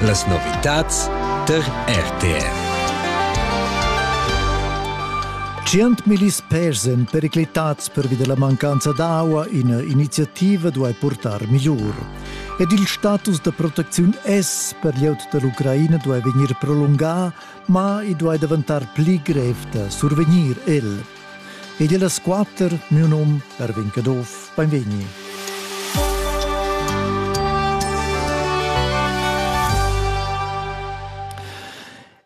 Las novitads tar RTR. Centmilis pers èn periclitads pervi da la mancanza d'aua, ina iniziativa duai purtar migliur. Ed il status da protecziun S per glieud da l'Ucraina duai vegnir prolungà, ma i duai daventar pli grev da survegnir el. Ed il das quatter, miu num Erwin Caduff, beinvegni.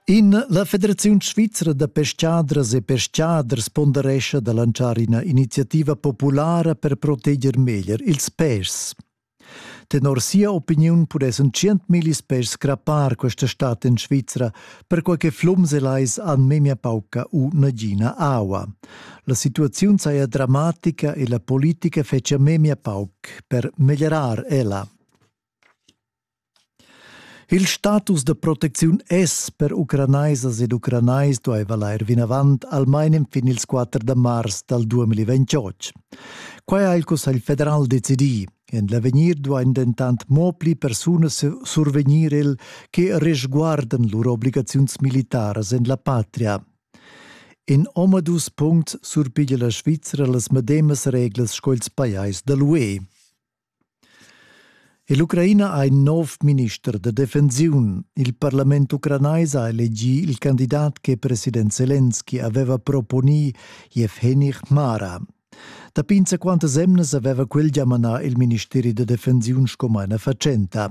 In la Federaziun svizra da pescadras e pescaders ponderescha da lanzar ina iniziativa populara per proteger meglier ils pèschs. Tenor sia opiniun pudessan tschientmillis pes scrappar questa stad en Svizra, perquai che flums e lais han memia pauca u nagina aua. La situaziun saja dramatica e la politica fetschia memia pauc per meglierar ella. Il status da protecziun es per ucranaisas ed ucranais duaiva lair vinavant almain enfin ils quatter da mars dal 2028. Quai ha il Cussagl federal decidì. En l'avegnir duain dentant mo pli persunas survegnir el che resguardan lur obligaziuns militaras en la patria. In omadus puncts surpiglia la Svizra las medemas reglas sco ils pajais da l'UE. Ell'Ucraina ha in nov minister da defensiun. Il parlament ucranais ha elegì il candidat che president Zelensky aveva proponì, Yevgeny Hmara. Dapi insaquantas emnas aveva quel gia manà il ministeri da defensiun sco maina fatschenta.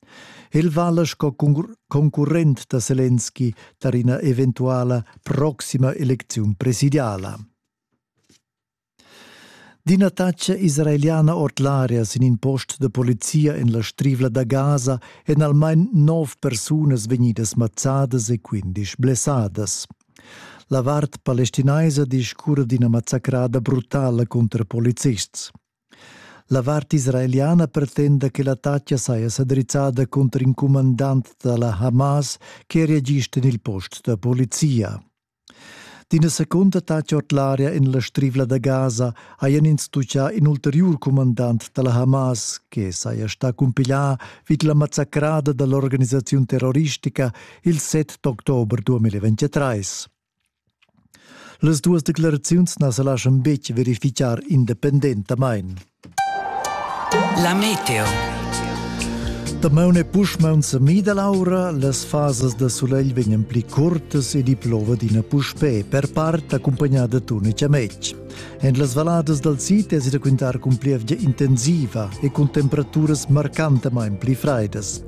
El vala sco concurrent da Selenski tar ina eventuala proxima elecziun presidiala. D'ina taxa israeliana ord l'aria sin in post da polizia en la strivla da Gaza èn almain nov persunas vegnidas mazzadas e quindisch blessadas. La vart palestinaisa discurra d'ina mazzacrada brutala cunter polizists. La vart israeliana pretenda che l'attacca saja sa drizzada cunter in cumandant da la Hamas che reagista en il post da polizia. D'ina secunda attacca ord l'aria en la strivla da Gaza hajan ins tuccà in ulteriur cumandant da la Hamas che saja stà cumpiglià vid la massacrada da l'organisaziun terroristica il 7 october 2023. Las duas declaraziuns na sa laschan betg verificar independentamain. La meteo. Damaun e puschmaun sa mida l'aura, las fasas da sulegl vegnan pli curtas ed i plova d'ina puspè, per part accumpagnada d'una chametg. En las valadas dal sid è si da quintar cun plievgia intensiva e cun temperaturas marcantamain pli fraidas.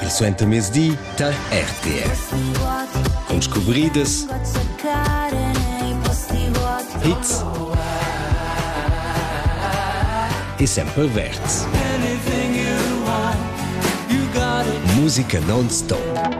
Il suentermezdi tar RTF. Con scubridas, hits e sempre verds. Musica non stop.